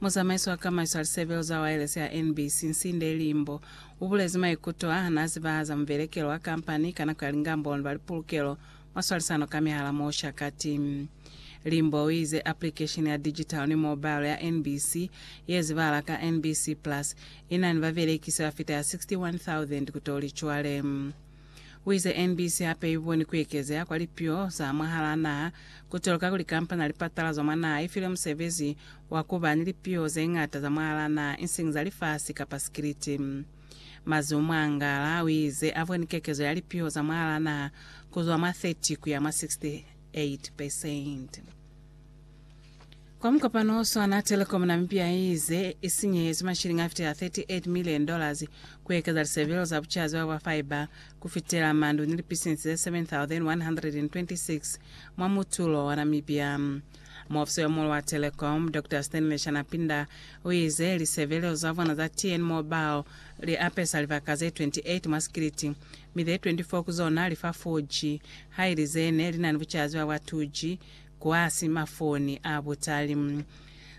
Muzamaiso wa kamaiso ya lisebelo za waelesi ya NBC, Nsinde Limbo, ubulezi maikuto a hana azibahaza mubelekelo wa kampani ka nako ya lingamboni ba lipulukelo mwa swalisano ka mihala mo Oshakati. Limbo uize aplikesheni ya digital ni mobile ya NBC, yezibahala ka NBC Plus, inani babelekisi bafita ya 61,000 kutoli cwale. Wize MBC hape iboni kuekezeha kwa lipio za mwahalaa naha kutoloka kuli kampani ya lipatala za mwa naha ifile musebezi wa kuba ni lipio zeñata za mwahalaa naha ising za lifasi kapa sikiliti. Mazimu Mwangala wize aboni kekezo ya lipio za mwahalaa naha kuzwa mwa 30 kuya mwa 68 percent. Kwa mukopano o swana, Telkom Namibia i ize i sinyehezwi mashilingi a fitela 38 million dollars ku ekeza lisebelo za bucazi bwa bwa fibre ku fitela mandu ni lipisinsi ze 7,126 mwa mutulo wa Namibia. Muofisi yo muulu wa Telkom, Doctor Stanley Shanapinda, u ize lisebelo za bona za TN Mobile li apesa libaka ze 28 mwa sikiliti, mi ze 24 ku zona li fa 4G, haili ze ne li na ni bucazi bwa bwa 2G, Kwa simafoni a butali.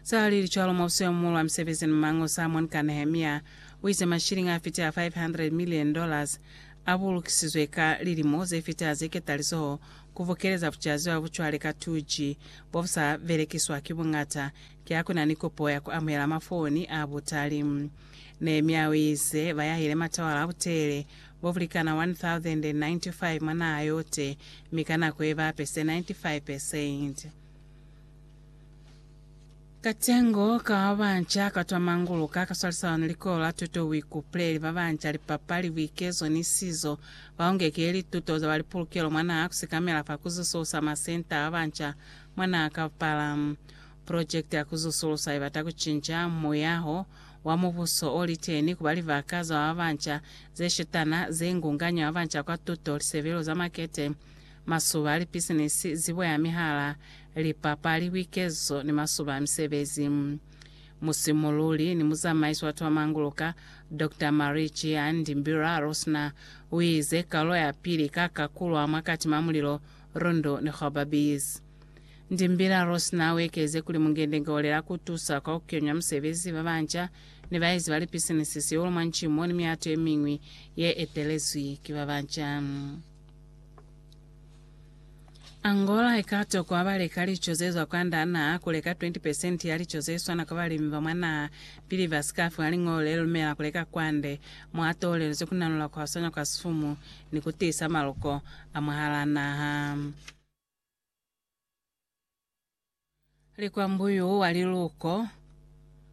Sa lili cwalo, mubuso yo muulu wa misebezi ni maño, Salmon ka Nehemia, u ize mashilingi a fitela 500 milioni dollars a bulukisizwe ka lilimo ze fitela ze ketalizoho ku bokeleza bucaziwa bu cwale ka 2G bo bu sa belekiswa ki buñata ki ha ku na ni kopo ya ku amuhela mafoni a butali. Nehemia u ize ba yahile matawala a butelele bobulikana 1,095 mwa naha yote, mi ka nako yebape se 95 percent. Katengo ka babanca katwa manguluka, kaswalisana ni likolo la tuto, buikupuleli, babanca, lipapali, buikezo, ni sizo, baungeke lituto za balipulukelo mwa naha, kusikamela fa kuzususa masenta a babanca mwa naha kapala. Project ya ku zusulusa i bata ku cinca muyaho wa Mubuso o li teni ku ba libaka za ba banca ze shutana, ze ngunganya ba banca kwa tuto, lisebelo za makete, masuba a lipisinisi, zibo ya mihala, lipapali, buikeziso, ni masuba a misebezi. Musimululi ni muzamaisi wa Twamanguluka, Doctor Marie Chiandi Mbira Rosner, u ize, Kaulo ya pili i ka kakulwa mwa Katima Mulilo, Rundu ni Gobabees. Ndimbila Ross naa wekeze kuli, Mungende-nge olela ku tusa kwa ku kenywa musebezi ba banca ni baezi ba lipisinisi sihulu mwa nci mo ni mihato ye miñwi ye etelezwi ki ba banca. Angola i ka tokwa ba leka lico ze zwa kwand'a naha, ku leka 20 pesenti ya lico ze swana kwa balimi ba mwa naha, pili ba si ka fiwa liñolo le lumela ku leka kwande, mo a toolelizwe ku nanula ku hwasanya kwa sifumu ni ku tiisa maluko a mwahal'a naha. Likwambuyu wa liluko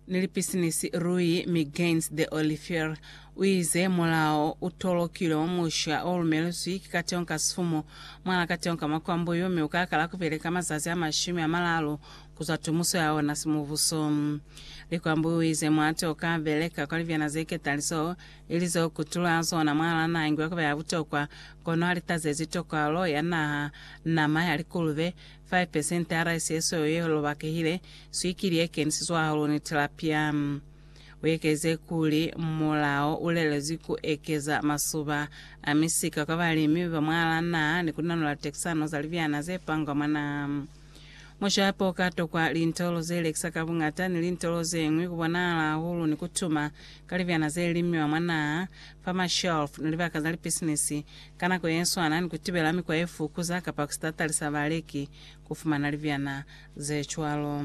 ni lipisinisi Rui Miguens de Olifier uize mulao utolokilwe mwa musha olumelezwi ki kateño ka sifumu mwal'a kateño ka makwambuyu mi ukakala kubeleka mazazi amashumi amalalu kuzwa tumuso yaona simubuso. Likwambuyu uize muhate ukabeleka kwa libyana zeketaliso ili z'o kutulwa zona mwalana ingu ya ku ba ya butokwa, kono ha li tazezi tokalo ya naha, nama ya likulube, 5 pesente ya raisi ye sweu ye lobakehile, swikili ye kenisizwe hahulu ni tilapia. U ekelize kuli, Mulao u lelezwi ku ekeza masuba a misika kwa balimi ba mwa laa naha ni ku nanula tekisano za libyana ze pangwa mwa naha. Mushapo uka tokwa lintolo ze lekisa ka buñata ni lintolo ze ñwi ku bonahala hahulu ni ku tuma ka libyana ze limiwa mwa naha, fa mashelf, ni libaka za lipisinisi, ka nako ye swana ni ku tibela mikwa ye fukuza kapa ku si tatalisa baleki ku fumana libyana ze cwalo.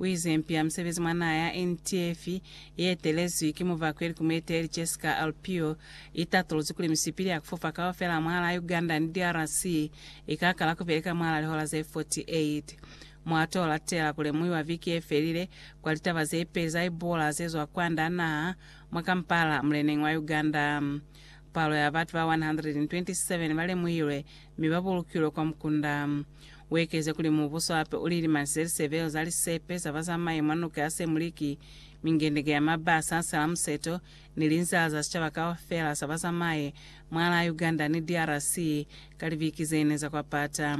Uizempia musebezi mwa naha ya NTF ietelezwi ki muvakweli ku mueteli Jessica Alpio, itatuluzwi kuli misipili ya kufupa kaufela mwala Uganda ni DRC ikakala kubeleka mwala lihola ze 48. Muato olatela kulemuiwa viki yefelile kwa litaba zepeli za Ebola zezwa kwanda naha mwa Kampala muleneng wa Uganda. Palo ya batu ba 127 ba lemuhilwe mi ba bulukilwe kwa mukunda. U ekeze kuli mubuso hape u lilimanisile lisebelo za lisepe za bazamai mwa nuka ya Semliki, mingendenge ya maba, sansela, museto, ni linzala za sicaba kaufela sa bazamai mwalaa Uganda ni DRC ka libiki ze ne za kwapata.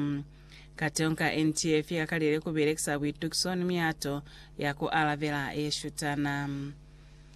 Kateho ka NTF i kakalile ku belekisa buitukiso ni mihato ya ku alabela ye shutana.